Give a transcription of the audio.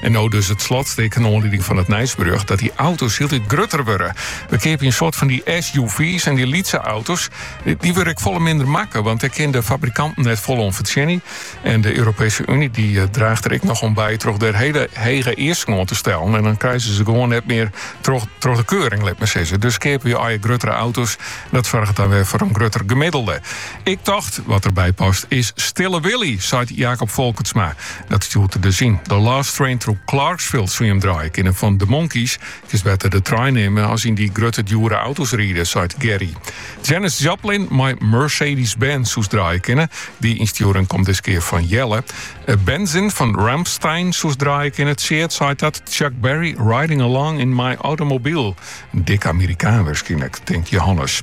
En no dus it slotstik in oanlieding fan it nijsberjocht, dat dy auto's hieltyd grutter wurde. Wy keapje in soort fan dy SUV's en dy lytse auto's, dy wurde ek folle minder makke, want dêr kin de fabrikanten net folle oan fertsjinje. En de Europeeske Uny dy eh, draacht der ek noch oan by troch der hiele hege easken te stellen. En dan krije se gewoan net mear troch, troch de keuring, lit mar sizze. Dus keapje wy gruttere auto's, dat soarget dan wer foar in grutter gemiddelde. Ik tocht, wat derby past, is Stille Willie, seit Jacob Folkertsma. Dat stjoert der dus yn. The Last Train to Clarksville soe je him draaie kinne fan The Monkees. Kinst better de trein nimme as yn dy grutte djoere auto's ride, seit Gary. Janis Joplin mei Mercedes-Benz soest draaie kinne. Dy ynstjoering komt dis kear fan Jelle. Benzin fan Rammstein soest draaie kinne. Tsjeard seit dat. Chuck Berry, Riding Along in My Automobile. In dikke Amerikaan wurskynlik, tinkt Johannes.